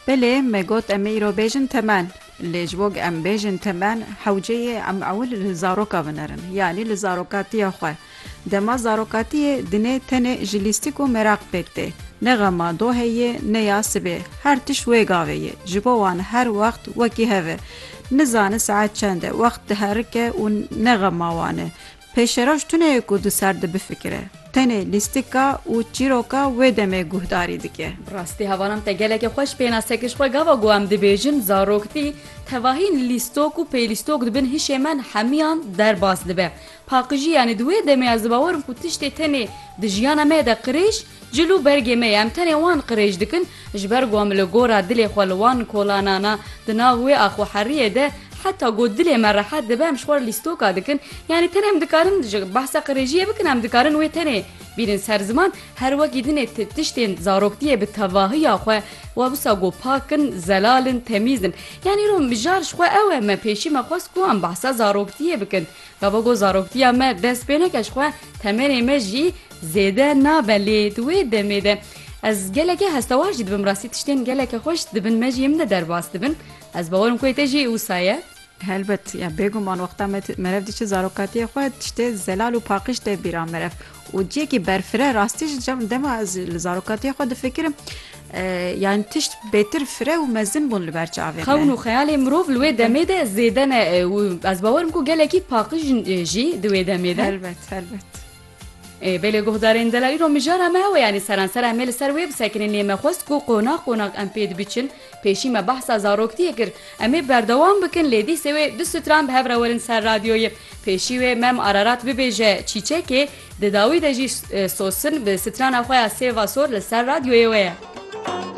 Belê me got em ê îro bêjin temen. Lê ji bo em bêjin temen hewceyê em ewil li zaroka vinerin yanî li zarokatiya xwe. Dema zarokatiyê dinê tenê ji lîstik û meraq pêk tê. Ne xema dohê yê ne ya sibê her tişt wê gavê yê. Ji bo wan her wext wekî hev e. Nizane saet çend e wext diherike û ne xema wan e. Pêşeroj tune ye ku di ser de bifikire. Tenê lîstika û çîroka wê demê guhdarî dike. Bi rastî hevanan te gelekî xweş pênase kir ji xwe gava ku em dibêjin zaroktî tevahîn lîstok û pêlîstok di bin hişê me hemiyan derbas dibe. Paqijî yanî di wê demê ez dibawer im ku tiştê tenê di jiyana me de qirêj, Cil û bergê me ye, em tenê wan qirêj dikin, ji ber ku em li gora dilê xwe li wan kolanana, di nav wê axweheriyê de, heta ku dilê me rehet dibe em ji xwe re lîstoka dikin, yanî tenê em dikarin ji behsa qirêjiyê bikin, em dikarin wê tenê bînin ser ziman, her wekî dinê ti tiştên zaroktiyê bi tevahiya xwe we wisa ku pak in, zelal in, temîz in. Yanî îro mijar ji xwe ew e, me pêşî me xwest ku em behsa zaroktiyê bikin, gava ku zaroktiya me dest pê neke ji xwe, temenê me jî, Zêde nabe lê di wê demê de ez gelekê hestewar jî dibim rastî tiştên gelekê xweş dibin me jî em ne derbas dibin ez bawerim ku te jî wisa ye. Helbet ya bêguman wexta me merev diçi zarokatiyê xwe tiştê zelal û paqij tê bîra merev û ciyekî berfire rastî jî cem dema ez li zarokatiyê xwe difikirim yani tişt bêtir fire û mezin bûn li ber çavê me. Xewn û xeyalê mirov li wê demê de zêde ne û ez bawerim ku gelekî paqij jî di wê demê de. Helbet helbet. Bê lê guhdarên dela îro mijara me hewe yanî seransera em ê li ser wê bisekinên lê me xwest ku qonax qonax em pê dibiçin, pêşî me behsa zaroktiyê kir, em ê berdewam bikin lê dîsê wê du stran bi hev re werin ser radyoyê. Pêşî wê Mem Ararat bibêje Çîçekê, di dawî de jî Sosin bi strana xwe ya Sêva Sor li ser radyoyê we ye.